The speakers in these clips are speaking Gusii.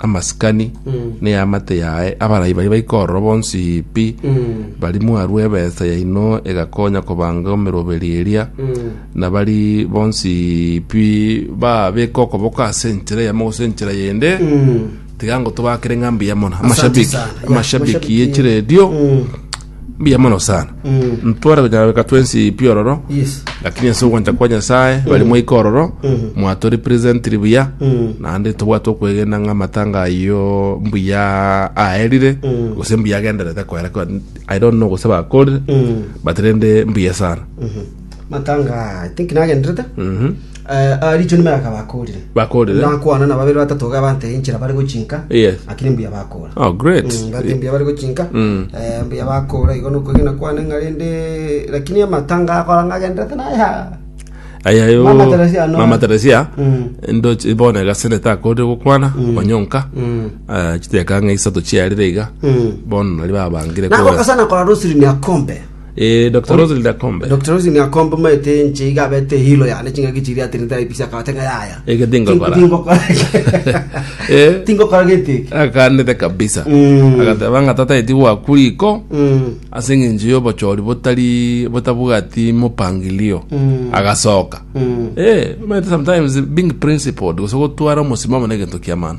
amasikani na eamate yaye, abarai baye baikorora bonsi pi, bari mwarwa ebesa yaino egakonya kobanga emeroberi eria, na bari bonsi pi babeka okoboko ase enchera eyemo gose enchera yende, tiga ngotobakere ng'a mbuyamona. Amashabiki, sana. Yeah, amashabiki amashabiki, ye chiredio, Mbuya mono sana. Mm. Ntwara gochana beka twensi pi ororo. Yes. Lakini ense ogwancha kwa Nyasaye bali mwaika ororo. Mm. Mwatori present buya. Mm. Nande tobwa to kwegenda nga matanga yo mbuya aerire. Mm. Gose mbuya agendere ta kwera kwa I don't know gose ba kore. Mm. But rende mbuya sana. Mm. Matanga I think na agendere ta. Mm. Aarichwe nimaye akaba akoorire. Bakoorire. Nakwana na babere batato iga abanteire inchera bare gochinka. Yes. Lakini mbuya bakoora. Oh, great. Mm, ngati mbuya bare gochinka. Mm. Eh, mbuya bakoora igo nokwegena kwane ng'a rende lakini amatanga akora ng'agenderete naye ha. ayayo Mama Teresia no. mama teresia Mm. ndoche bono egasene takorire gokwana onyonka Mm. Ah, chiteka ng'a isato chiarire iga Mm. bono nari babangire Nako kora kasana kora rosiri ni akombe. Eh, Dr. Roselyn Akombe. Dr. Rosin Akombe maete nche iga abete hilo yane ching'aki chiri ate nitari pisi akabate ng'a yaya. Ege tingokora. Tingokora. Eh. Tingokora gete eke. Akanete kabisa. Mm. Agateba ng'a tata eti gwaku riko. Mm. ase eng'encho y'obochori botari botabwati mopangilio Mm. agasoka Mm. Eh, maete sometimes being principled gose gotwara omosimamo na egento kiamana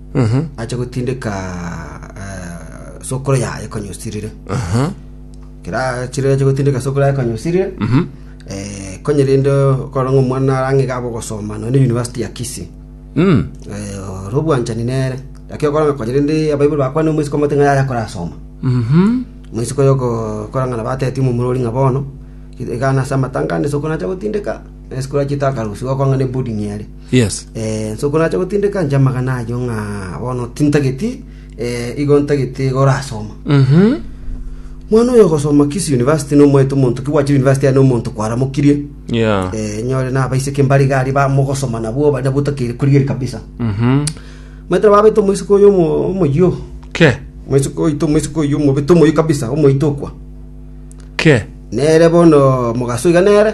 Mhm. ache gotindeka eh, sokoro yaye konyusirire Aha. kera chire ache gotindeka sokoro yaye konyusirire Mhm. eh, konyerinde koranga omwana arange gabo gosoma none university ya kisi Mm. eh, oro obwanchani nere lakini okoranga konyerinde abaibuli bakwane omwisi komote ng'a yaya korasoma Mhm. mwisi koyo ko- korang'ana bateti mumurori ng'a bono igana ase amatanga ande sokoro nacha gotindeka esikoro achita akarusiwa okong'a ne boarding ere Yes. Inse okorache gotindeka inche amagana ayio ng'a bono tintageti, eh, igo ntagete iga orasoma. Mhm. Mwana oyo ogosoma kisi university nomoete omonto ki gwachire university aye nomonto kwaramokirie. Yeah. Eh, nyore nabaiseke mbare iga aria bamogosoma nabwo baria botakeire korigeria kabisa. Mhm. Maete babete omoiseke oyo omo omoyio. Ke. Omoiseke oito omoiseke oyo omobete omoyio kabisa omoitokwa. Ke. Nere bono mogaso iga nere.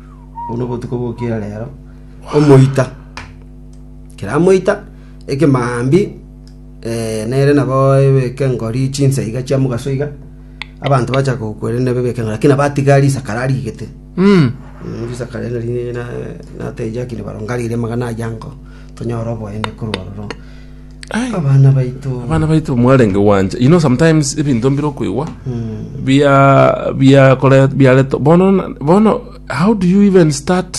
Obo nobotuko bw'okira reero, omoita kera amoita ekemambi eh, nere nabo ebeke ngori chinsa iga chia mogaso iga abanto bacha gokwere nebe ebeke ngori lakini abatiga risakara arigete Mm. Mm, risakara ere nari na- nateja kiri baronga rire magana ayango tonyora oboende korwa ororo Ai, abana baito abana baito mwarenge gwanja you know sometimes ebinto mbire okoigwa bia bia kore biareto bono na- bono how do you even start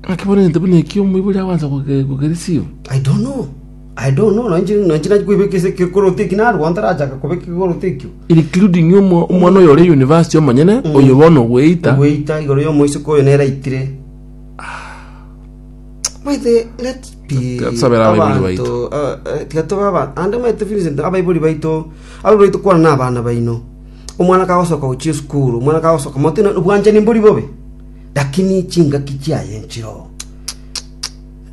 ng'aki bono egento buna ekio omoibori agwansa goke- gokereceive i don't know i don't know nanchi nanchi nanchi kwebeka ase kekoroto eki narwo ntarachaka kobeka kekoroto ekio including omo- omwana oyo ore university omonyene oyo bono ogweita gweita igoro ya omoisiko oyo nere aitire Maite let be Tusabira abaibori abanto, baito. ah, eh, tiga tobe aba- ande maite Vincent abaibori baito abaibori baito kwana na abana baino omwana kagosoka gochia esukuru omwana kagosoka mote na obwanchani mbori bobe lakini chingaki chiaye nchiroo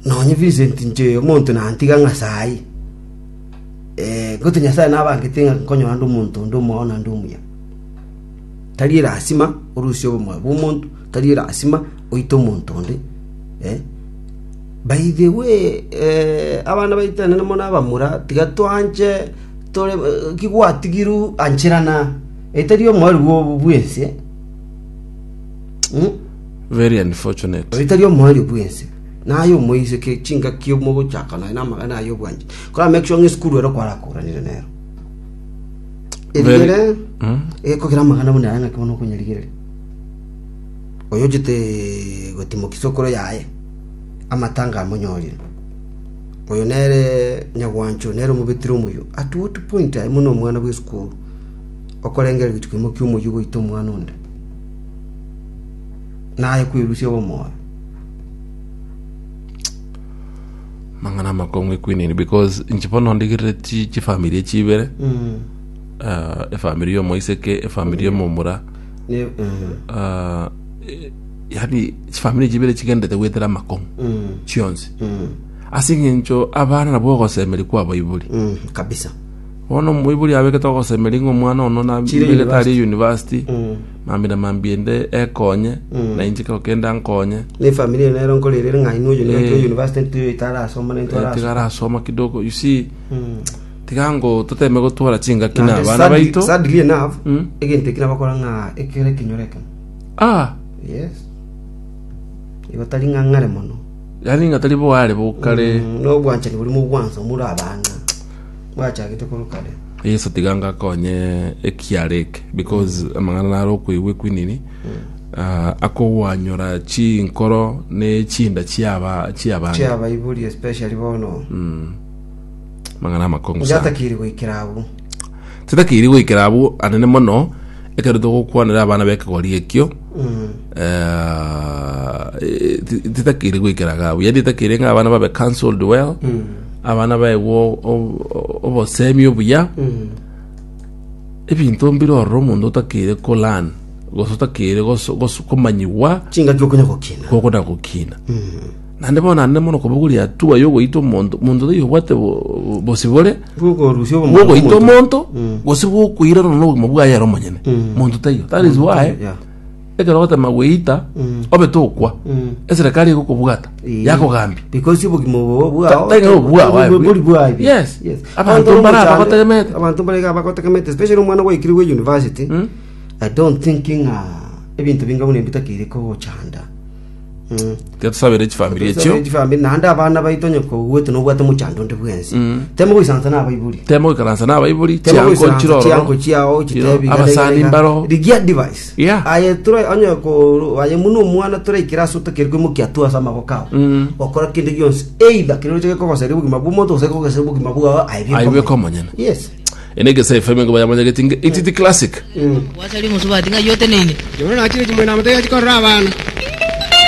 nonye Vincent inche omonto nantiga ng'a sayi eh, goti nyasaye nabangete ng'a nkonyora nde omonto onde omwao naende omuya Tari lasima orusie obomoyo bw'omonto, tari lasima oite omonto onde. By the way, abana baitane namo nabamura, tiga toanche tore ki gwatigirwe ancherana, etari omoerio bw'obo bw'ense. Very unfortunate. Etari omoerio bw'ense. Naye omoise ke chingaki mogochaka naye na amagena aye obwanchani. Kora make sure ng'a esukuru ero kwarakoranire nero. Erigere egekogera amagana buna aya ng'ake bono okonyerigereria. Oyochete gotimokia isokoro yaye amatanga amonyorire. Oyo nere nyagwancho nere omobetiri omoyio at what point aye buna omwana bw'esukuru okorengera gochia koimokia omoyio goita omwana onde naye kwerusia obomoyo. mang'ana amakong'u equinini because inche bono ndigerire chi chifamiri chibere Mm. uh, efamiri yomoiseke efamiri yomomura Ne- eh, uh, e- yani chifamiri chibere chigendete gwetera amakong'u mm, chionsi mm, ase eng'encho abana nabo ogosemeri kwa abaibori mm, kabisa bono omoibori abegete ogosemeri ng'a omwana ono Chire nabegete ari university. university Mm. Mambia na mambia inde ekonye, na inche ekero kende ankonye. Ne efamiri eye nero nkorerere ng'a inwe oyio nere Eh. university ntiri oyo tarasoma ne Eh, tiga ntorasoma. arasoma kidogo you see Mm. tiga ngo toteme gotwara chingaki na Naende abana sad- baito sadly enough, Mm. egento eki nabakora ng'a ekero ekenyoro ekemo. ah Yes. Igo tari ng'a ng'are mono. yani ngatari boare bokare Mm, nobwanchani borimo obwansa omura abang'a. gwachagete korwa kare. Yeso tiga anga akonye ekiara eke because mm. amang'ana naro okoigwa ekwinini uh, akogwanyora chinkoro ne chinda chiaba chiaba chiaba iburi especially bono mm. mang'ana amakongo sana yatakiri goikira abu titakiri goikira abu anene mono ekero togokwanera abana bekegori ekio eh, ti- titakeire goikera iga abwo yaani titakeire ng'a abana babe cancelled well abana baegwa o- o- obosemi obuya ebinto mbire ororo omonto otakeire kolan gose otakeire goso- goso- komanyiwa chingaki okonya gokina gokona gokina Naende bono naende mono kobogoria tuba y'ogoita omonto, monto taiyo obwate bo- bosibore Bw'okorusia obomonto bw'ogoita bw'omonto. omonto Mm. gose bw'okoirana n'obogima bwaye ere omonyene Mm. monto taiyo that is why Yeah. ekero ogotema gweita Mm. obe tokwa Mm. eserekari egokobwata Eh. yakogambia Because obogima obo bwao- taiga obwao, aye. bori- bori bwaye. Yes. Yes. Abanto Abanto mbara b'omochando- abagotegemete. Abanto mbare abagotegemete, especially omwana gwaikire gwe university. Mm. I don't think ng'a ebinto binga buna ebitakeire kogochanda. Ketusabere chifamiri echio. chifambi naende abana baito onye kogwete nobwate mochando onde bwensi temo goisansa na abaibori Temo goikaransa na abaibori, Temo chianko goisansa chiroro. chianko chiao Chiro, chitebi abasani mbaro. rigia device Yeah. aye tura onye ko aye muno omwana turaikira ase otakeri koimokia tu ase amaboko ao okora kende gionsi either kero oche gekogosera obogima bwa omonto gose gekogosera obogima bwao aye Aye bweka omonyene. yes Ene gesa FM ngo bayamanyageti nge ititi classic. Gwasari omosubaati ng'ai oteneine. Yohana nakire chimwena amotebia chikorora abana.